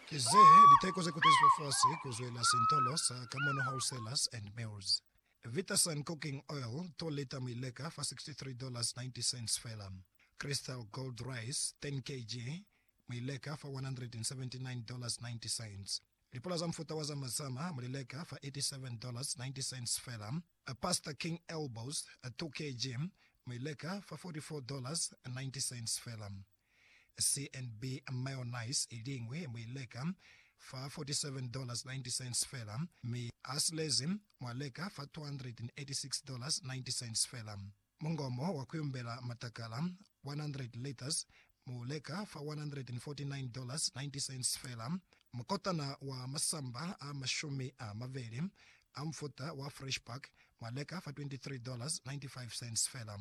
Ki ze liteko ze kutezizwe fasi ku zwela sintolo sa Kamono Wholesalers and Mills. Vitasun Cooking Oil, 2 lita muileka fa $63.90 fela. Crystal Gold Rice, 10 kg, muileka fa $179.90. Lipula za mufuta wa Zama Zama mulileka fa $87.90 fela. Pasta King Elbows, 2 kg, muileka fa $44.90 fela. CNB mayonnaise iliñwi muileka fa $47.90 fela, mi asilezi mwaleka fa $286.90 fela. Mungomo wa kuyumbela matakala, 100 litres, muuleka fa $149.90 fela. Mukotana wa masamba a mashumi amabeli a mufuta wa Fresh Pack mwaleka fa $23.95 fela.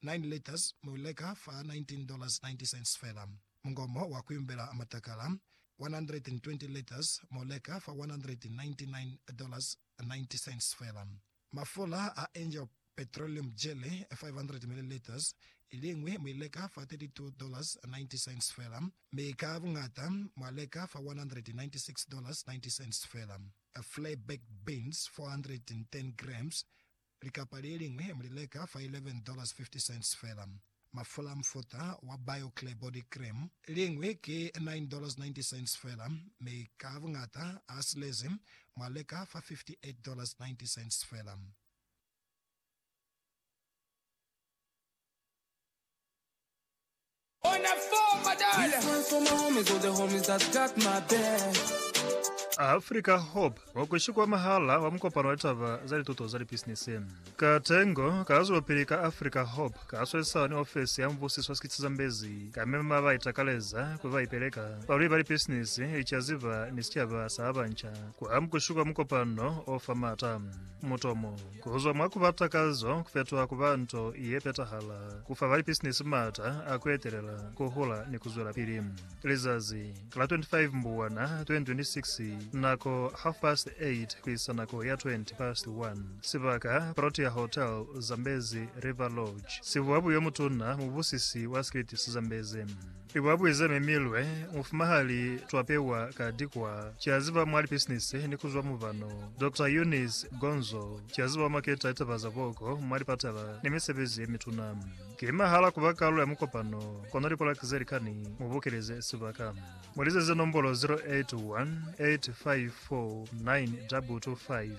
Nine Letters mu i leka fa $19.90 fela. Mungomo wa ku imbela matakala, 120 Letters mu leka fa $199.90 fela. Mafula a Angel Petroleum Jelly, 500 milliliters, i liñwi mu i leka fa $32.90 fela, mi ka buñata mwa leka fa $196.90 fela. Flay Baked Beans, 410 grams, Likapa le liñwi mu li leka fa $11.50 fela. Mafula a mufuta wa BioClear Body Cream, liñwi ki $9.90 fela, mi ka buñata a silezi mu a leka fa $58.90 fela. Africa Hub, wa ku shikwa mwahal'a wa mukopano wa litaba za lituto za lipisinisi. Ka tengo, ka zwelopili ka Africa Hub, ka swesisana ni ofisi ya mubusiso wa sikitsi za mbezi, ka mema ba itakaleza ku ba ipeleka, balweli ba lipisinisi, licaziba ni sicaba sa ba banca ku amu ku shikwa mukopano o fa m'ata. Mutomo. Ku zwa mwa ku ba takazo ku fetoha ku ba nto ye petahala, ku fa balipisinisi m'ata a ku etelela, ku hula ni ku zwelapili. Lizazi la 25 Mbubwana 2026, nako half past 8 ku isa nako ya 20 past 1, sibaka Protea Hotel, Zambezi River Lodge, sibuwa buyo mutuna mubusisi wa Scritis Zambezi. I ba buize mi milwe mufumahali twapewa ka dikwa ca ziba mwa lipisinisi ni kuzwa mubano Doctor Eunice Gonzo ca ziba maketa litaba za boko mwa lipatala ni misebezi ye mituna. Ki mahala kuba kalulo ya mukopano kono lipolaki ze likani mu bukeleze sibaka. Mu lizeze nombolo 0818549225.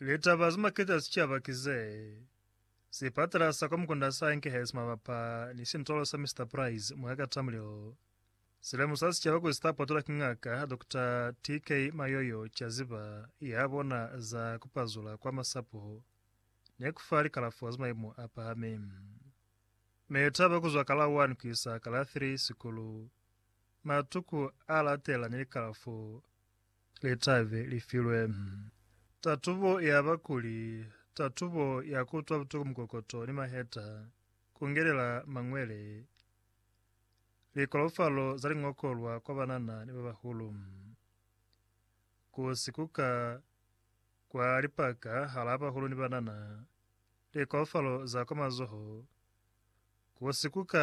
Litaba ze makete za sicaba ki ze, Sipatala sa kwa mukunda sa Enkhurst mabapa ni sintolo sa Mister Price mwa ka Tamrill si lemusa sicaba kuli sita potolwa ki Ngaka Dokota TK Mayoyo caziba ya bona za ku pazula kwa masapo ni ku fa likalafo za maimo a pahami. Litaba ku zwa ka la 1 ku isa ka la 3 sikulu, matuku a latela ni likalafo litabi li filwe tatubo ya bakuli, tatubo ya ku utwa butuku mukokoto ni maheta, ku ngelela mañwele, likolofalo za liñokolwa kwa banana ni babahulu, ku si kuka kwa lipaka halaa bahulu ni banana, likolofalo za kwa mazoho, ku si kuka